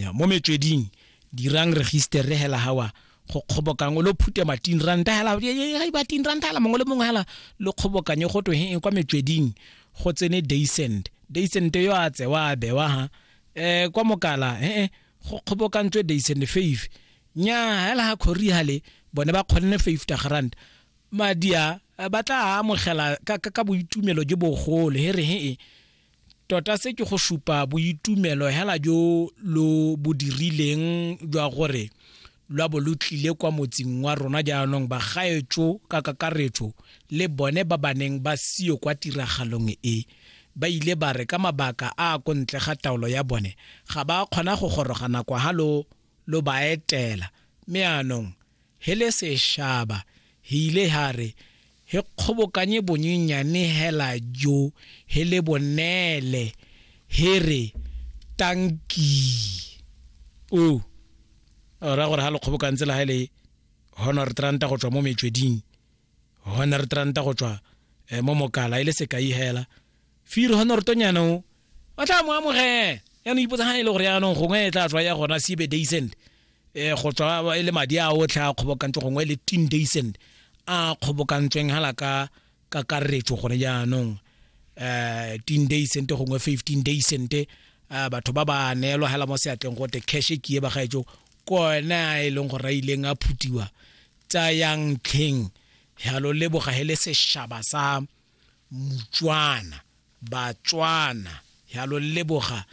Ya, mo metsweding dirang register re hela hawa go kgobokang lo phute matin ranta hela ga e batin ranta hela mongwe le mongwe hela lo kgobokanye go twe he kwa metsweding go tsene daysend daysend yo a tsewa a bewa ha eh kwa mokala he go kgobokantswe daysend fave nya hela ha khori hale bone ba kgonne 50 rand madia eh, ba tla amogela ka, ka, ka boitumelo jo bogolo he re he e Tota se ke go supa boitumelo hela jo lo bo dirileng jwa gore lwa bo lo tlile kwa motsing wa rona jaanong bagaetso ka kakaretso le bone ba ba neng ba sio kwa tiragalong e ba ile ba re ka mabaka a a kontle ga taolo ya bone ga ba kgona go goroga nako ha lo lo ba etela me anong he le seshaba he ile ha re He kgobokanye bonyenyane hela jo he le bonele he re, Tankii. O ra gore ha le kgobokantse le ha le Honert Ranta go tswa mo metsweding, Honert Ranta go tswa eh, mo mokala, e le sekai hela, fear honortonyana o ba tla mo amogela yaanong ipotsa ga e le gore yaanong gongwe e tla tswa ya gona sebe daysend um go tswa e le madi a otlhe a kgobokantswe gongwe e le teen daysend a kgobokantsweng hala ka kakaretso gone jaanong um teen daysend gongwe fifteen daysend um batho ba ba neelwa hela mo seatleng gote cash e kie bagaetso kona e leng gore a ileng a phutiwa tsayang tlheng yalo leboga he le seshaba sa motswana batswana ya lo leboga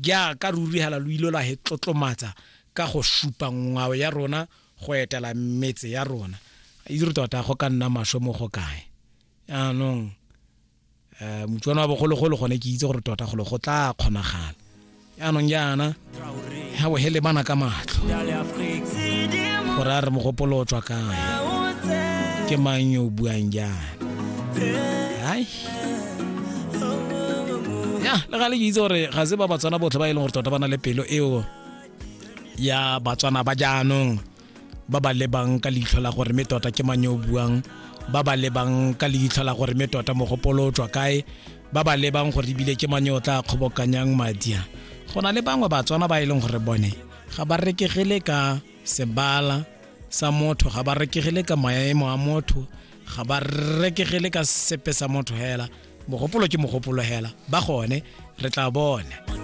jaaka ruri hala lo ilo la he tlotlomatsa ka go supa ngwao ya rona go etela metse ya rona itse re tota go ka nna maswe mo go kae anong um eh, motswana wa bogologolo gone ke itse gore tota golo go tla kgonagala yaanong jaana ga o hele bana ka matlho gore a re mogopolo o tswa kae ke mang yo o buang jaana ai ya le ga le ke itse gore ga se ba batswana botlhe ba e leng gore tota ba na le pelo eo ya batswana ba jaanong ba ba lebang ka leitlho la gore mme tota ke mang yo o buang ba ba lebang ka leitlho la gore mme tota mogopolo o tswa kae ba ba lebang gore ebile ke mang yo o tla kgobokanyang madi a go na le bangwe batswana ba e leng gore bone ga ba rekegele ka sebala sa motho ga ba rekegele ka maemo a motho ga ba rekegele ka sepe sa motho hela mogopolo ke mogopolo hela ba gone re tla bona